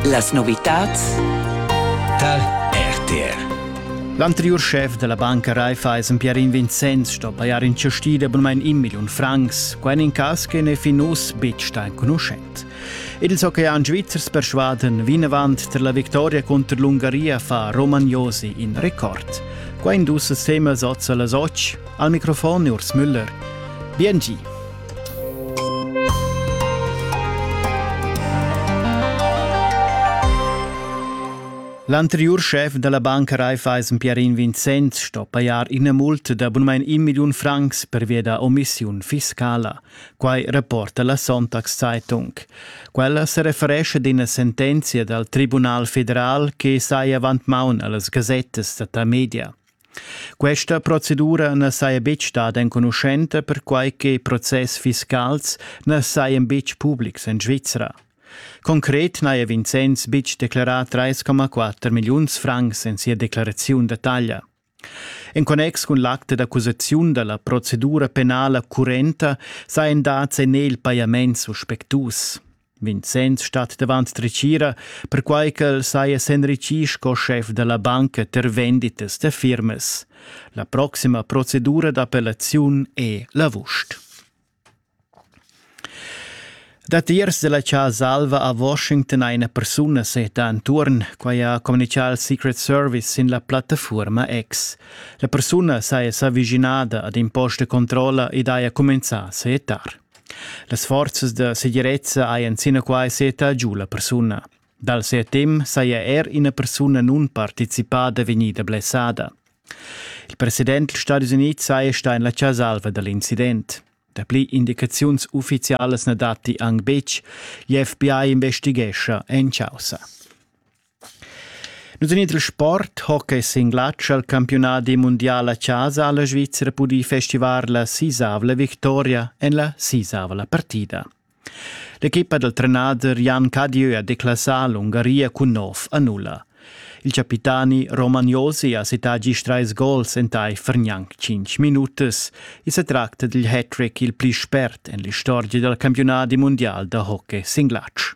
Las novitads tar RTR. L'anteriur schef della banca Raiffeisen Pierin Vincenz sto pajar in cestida bunmain in million francs, quai in cas che n'è fin uss betg stà enconuschent. Ils oceans svizzers persvaden vinavant tar la victoria contro l'Ungaria fa Romagnosi in record. Quai in dus semas oz a las 8. Al microfon Urs Müller. Bien L'anteriur schef da la banca Raiffeisen Pierin Vincenz sto pajar ina multa da bunmain in milliun francs per via da omissiun fiscala. Quai reporta la Sonntagszeitung. Quella se referesce ad ina sentenzia dal Tribunal federal che sai avant maun a las gasettas da ta media. Questa procedura na saja betg stada enconuschenta perquai che process fiscals na sajan betg publics en Svizra. Concret n'haja Vincenz betg declerà 3,4 milliuns francs en sia declaraziun da taglia. En connex cun l'acte d'accusaziun da la procedura penala currenta sajan dads en el pajaments suspectus. Vincenz stat davant dretgira, perquai ch'el saja s'enritgì sco schef da la banca tar venditas da firmas. La proxima procedura d'appellaziun è l'avust. Datiers della Casa Alva a Washington eine persona seta entuorn, quai ha communichà il Secret Service sin la plattafuorma X. La persuna saja s'avvicinada ad in post de controlla ed haja comenzà a seetar. Las forzas da segirezza hajan sinaquai seta giu la persuna. Dal ses temp saja er ina persuna nunparticipada vegnida blessada. Il president dals Stati Unids saja stà en la chasalva da l'incident. Dapli indicaziuns uffizialas na datti anc betg. L'FBI investighescha en chaussa. Nus en il sport, hockey singlatsch al campiunadi mundial a chasa ha la Svizra pudì festivar la sisavla victoria en la sisavla partida. L'equipa dal trenader Jan Cadieu ha declassà l'Ungaria cun nov a nulla. Il capitani Roman Josi ha cità gist trais gols entaifer gnanc cinc minutas. I sa tracta dil hat-trick il pli spert en l'istorgia dal campiunadi mundial da hockey singlatsch.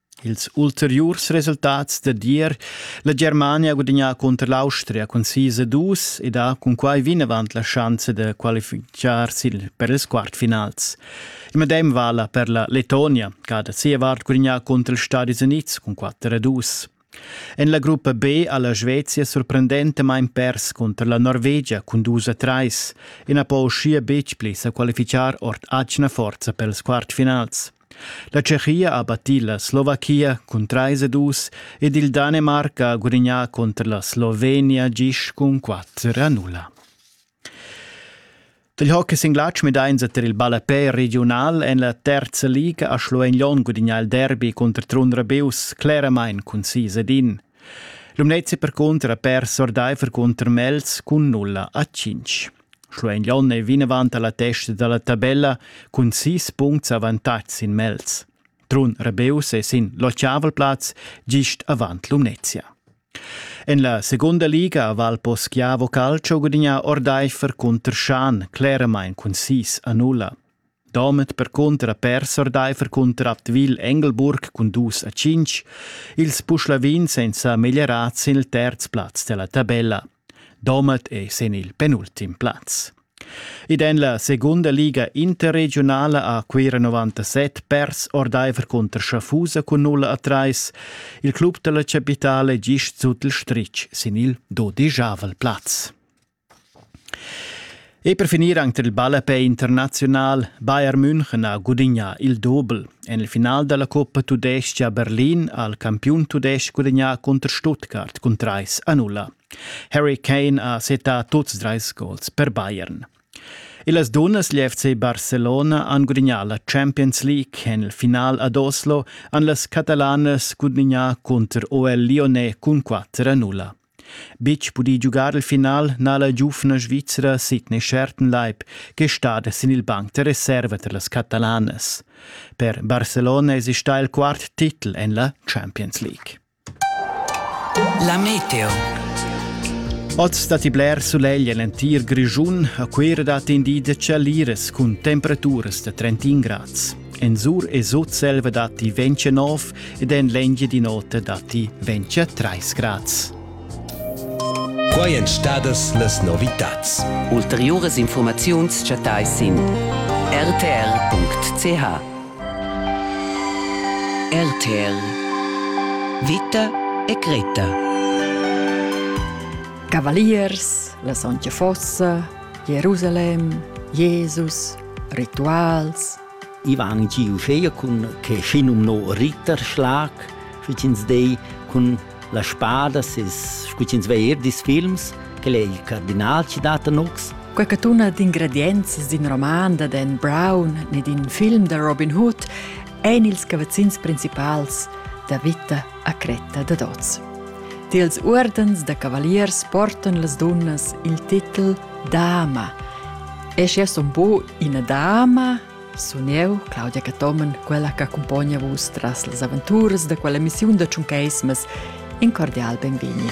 Ils ulteriurs resultats dad ier la Germania ha gudagnà cunter l'Austria cun sis a dus ed ha cunquai vinavant la schanza da qualifitgar sil per ils quartfinals. Il medem vala per la Letonia, che ha da sia vart gudagnà cunter ils Stadis Unids cun quatter a dus. En la gruppa B ha la Svezia sorprendentamain pers cunter la Norvegia cun dus a trais e na po uschia betg pli sa qualificar ord atgna forza per ils quartfinals. La Tschechia ha battì la Slovachia cun trais ed dus ed il Danemarc ha gudignà cunter la Slovenia gist cun quatter a nulla. Dil hockey sin glatsch medainsa tar il ballapè regiunal en la terza liga a Schluein-Lon gudignà il derby cunter Trun Rabius cleramain cun sis ed in. Lumnezzi percunter ha pers ordaifer cunter Mels cun nulla a cinc. Schluein Jon ei vinavant alla testa dalla tabella cun sis puncts avantatgs sin Mels. Trun Rebeus è sin l'ottavelplatz gist avant Lumnezia. En la segunda liga a Valpo Schiavo Calcio gudigna Ordeifer cunter Schan claramain cun 6 a 0. Domat percunter ha pers ordeifer cunter Advil Engelburg cun dus a cinc, ils Puschlavins ein sa meglierats sin il terz plaz dalla tabella. Domat è sin il penultim plaz. Ed en la segunda liga interregionala ha Cuira 97 pers ordeifer cunter Schaffhausa cun 0 a 3. Il club dalla capitale gist sut il stritg sin il dodijavel plaz. E per finir anc tar il ballapei internaziunal Bayern München ha gudignà il dobel. En il final da la Coppa tudestga a Berlin ha il campiun tudestg gudagnà cunter Stuttgart cun trais a nulla. Harry Kane ha settà tuts trais gols per Bayern. E las dunnas, l'FC Barcelona, han gudignà la Champions League. En il final ad Oslo han las catalanas gudignà cunter OL Lyonnais cun 4 a 0. Betg pudì giugar il final n'ha la giuvna Svizra Sidney Schertenleib che stada sin il banc da reserva tar las catalanas. Per Barcelona èsi stà il quart titel en la Champions League. La Meteo. Oz datti bler sulegl en l'entir Grischun. A Cuira datti in di da chaliras cun temperaturas da 31 grads. En sur e sut selva datti 29 ed en l'Engia di nota datti 23 grads. Quai èn stadas las novitads. Ulteriuras informaziuns chattais sin rtr.ch. RTL Vita e Greta. Cavaliers, la Sontga Fossa, Jerusalem, Jesus, Rituals. I van giu uschea cun che schinum no Ritterschlag, sch'ins dei cun la spada ses sch'ins vei er dis films, quel è il cardinal ci dat nux. Quecatuna d'ingredienzi d'in roman da Dan Brown ne d'in film da Robin Hood ein ils cavazzins principals da vita a cretta dad oz. Tiels uordens da cavaliers portan las dunnas il titel dama. E schi es un po ina dama, sun eu, Claudia Catomen, quella che accompagna vus tras las aventuras da quella missiun da Tschuncaismas. In cordial benvegni.